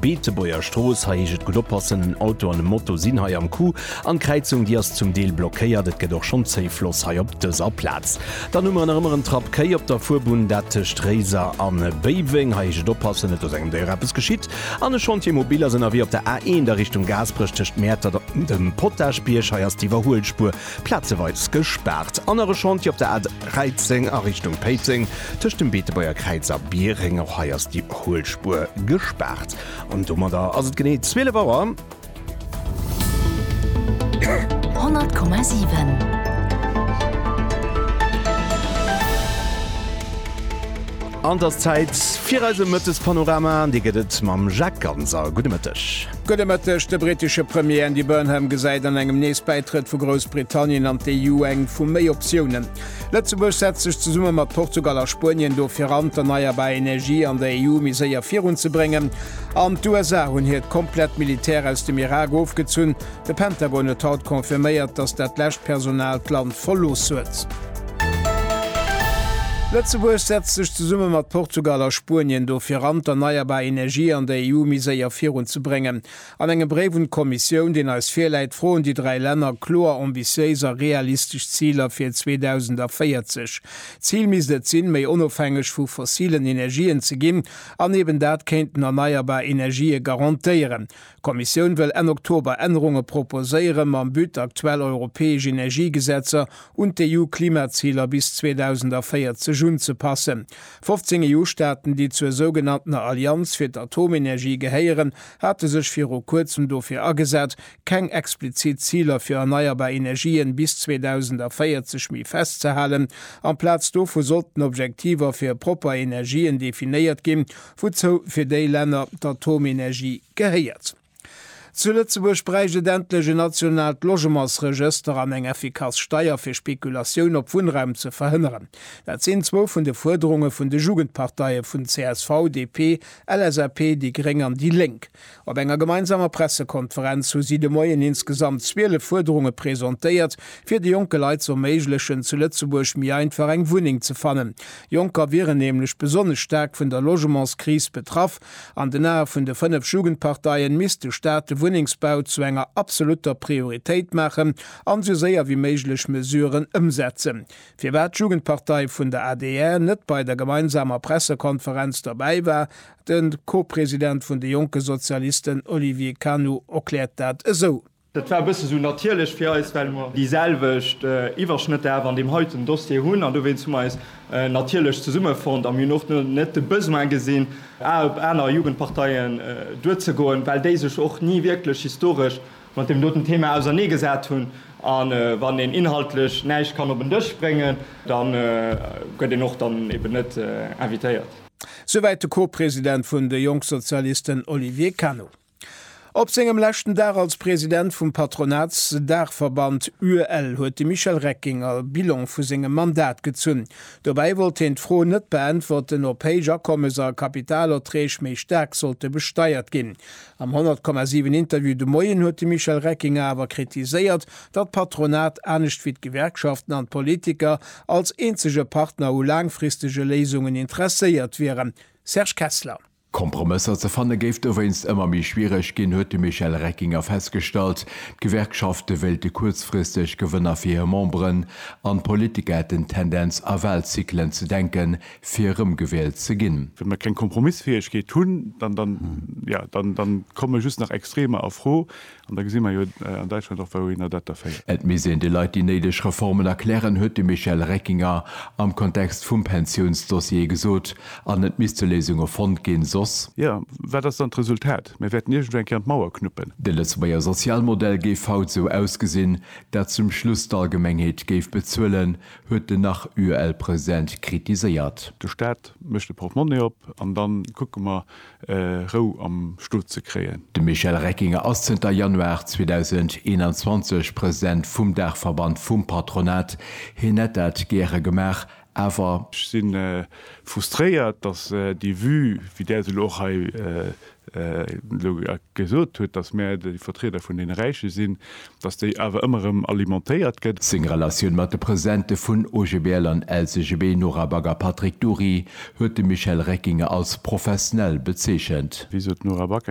Beetebuerger Strooss, Hei heescht et gutt oppassen, en Auto an e Moto sinn hei am Coup an d'Kräizung déi ass zum Deel blockéiert. Et gëtt och schonn Zéif loss hei op dëser Plaz. Dann hu mer nach ëmmer en Trapp Kéi op der Fuerbunn, dat tëscht Réiser a Béiweng. Hei heescht et oppassen, net dass engem Déier eppes geschitt. An e Chantier mobil ass ënnerwee op der A1 a Richtung Gaasperech tëscht Mäertert an dem Potagebierg. Hei ass d'Iwwerhuelspuer Plazeweis gespaart. Anere Chantier op der A 13 a Richtung Péiteng, tëscht dem Beetebuerger Kräiz a Bieréng. Och hei ass déi Huelspur gespaart. An domadder ass et genee 12 Auer. 100,7. An 't ass Zäit fir eise Mëttespanorama. An dee gëtt et mam Jacques Ganser. Gudde Mëtteg. Gudde Mëtteg, De brittesche Premier Andy Burnham gesäit an engem nees Bäitrëtt vu Groussbritannien an d'EU eng vu méi Optiounen. Lëtzebuerg setzt sech zesumme mat Portugal a Spuenien dofir an, d'erneierbar Energie an der EU méi séier virun ze bréngen. An d'USA hunn hiert komplett Militär aus dem Irak ofgezunn. De Pentagon huet haut confirméiert, datt dat lescht Personal d'Land verlooss huet. Lëtzebuerg setzt sech zesumme mat Portugal a Spuenien dofir an, d'erneierbar Energie an der EU méi séier virun ze bréngen. An engem Bréif un d'Kommissioun, deen eis virläit, froen déi dräi Länner kloer ambitiéis a realistesch Ziler fir 2040. Zil misst et sinn, méi onofhängeg vu fossilen Energien ze ginn an eben dat kéinten erneierbar Energië garantéieren. D'Kommissioun wëll Enn Oktober Ännerunge proposéieren, mam But, aktuell europäesch Energiegesetzer un d'EU-Klimaziler bis 2040 unzepassen. 15 EU-Staaten, déi zur sougenanntener Allianz fir d'Atomenergie gehéieren, hate sech viru kuerzem dofir agesat, keng explizit Ziler fir erneierbar Energien bis 2040 méi festzehalen. Amplaz dovu sollten Objektiver fir propper Energien definéiert ginn, Wouzou fir déi Länner d'Atomenergie gehéiert. Zu Lëtzebuerg bräicht et endlech en nationaalt Logementsregëster an eng effikass Steier fir Spekulatioun op Wunnraum ze verhënneren. Dat sinn zwou vun de Fuerderunge vun de Jugendparteie vun csv, DP, LSAP, déi gréng an déi Lénk. Op enger gemeinsamer Pressekonferenz hu si de Moien insgesamt 12 Fuerderunge presentéiert, fir de jonke Leit ze erméiglechen, zu Lëtzebuerg méi einfach eng Wunneng ze fannen. Jonker wieren nämlech besonnesch staark vun der Logementskris betraff. An den Ae vun de fënnef Jugendparteien misst de Staat de Wunnengsbau zu enger absolutter Prioritéit maachen an esou séier wéi méiglech Mesuren ëmsetzen. Firwat d'Jugendpartei vun der adr net bei der gemeinsamer Pressekonferenz dobäi war, De Co-President vun de jonke Sozialisten Olivier Canu erkläert dat esou. Dat war e bësse sou natierlech fir eis, well mer déi selwecht Iwwerschnëtter awer an deem heiten Dossier hunn. An dowéinst hu mer eis natierlech zesummefonnt a mir hunn och net de Besoin gesinn, Ae op aner Jugendparteien duerzegoen, well déi sech och ni wierklech historesch mat deem doten Thema ausernee gesat hunn. A wann een inhaltlech näischt kann op en Dësch bréngen, da gëtt een och dann eben net invitéiert. Souwäit de Co-President vun de Jongsozialisten Olivier Cano. Op sengem leschten Dag als President vum Patronatsdaachverband UEL huet de Michel Reckinger Bilan vu sengem Mandat gezunn. Dobäi wollt hien d'Fro net beäntwerten, ob héich Akommes a Kapitalerträg méi staark sollte besteiert ginn. Am 100,7 Interview de Moien huet de Michel Reckinger awer kritiséiert, datt d'Patronat, anescht wéi d'Gewerkschaften an d'Politiker, als eenzege Partner u laangfristege Léisungen interesséiert wieren. Serge Kessler. Kompromësser ze fanne géif dowéinst ëmmer méi schwiereg ginn, huet de Michel Reckinger festgestallt. D'Gewerkschafte wéilte kuerzfristeg Gewënner fir hir Memberen an d'Politiker hätten d'Tendenz a Wahlzyklen ze denke fir erëmgewielt ze ginn. Wa mir keng Kompromissfäegkeet hunn, dann komme just nach Extremer a Fro. An da gesi mer jo an Däitschland och, wouhinner dat da féiert. Et misst een de Leit déi néideg Reformen erklären, huet de Michel Reckinger am Kontext vum Pensiounsdossier gesot. An et misste Léisunge fonnt ginn, soss. Jo, wat ass dann d'Resultat? Mir wäerten iergendwou eng Kéier an d'Mauer knuppen. De Lëtzebuerger Sozialmodell géif haut esou ausgesinn, dat zum Schluss d'Allgemengheet géif bezuelen, huet den Nach-UEL-President kritiséiert. De Staat mécht de Portemonnaie op an dann kucke mer, Rou am Stot ze kréien. De Michel Reckinger ass zënter Januar 2021 President vum Daachverband vum Patronat. Hien hätt dat gäre gemaach, awer. Ech si frustréiert, datt déi Vue, wéi där se elo och hei elo gesot huet, datt mir déi Vertrieder vun deene Räiche sinn, Datt déi awer ëmmer erëm alimentéiert gëtt. Seng Relatioun mat de Presidente vun OGBL an LCGB, Nora Bagger a Patrick Dury, huet de Michel Reckinger als profesnell bezeechent. Wéi sot d'Nora Back?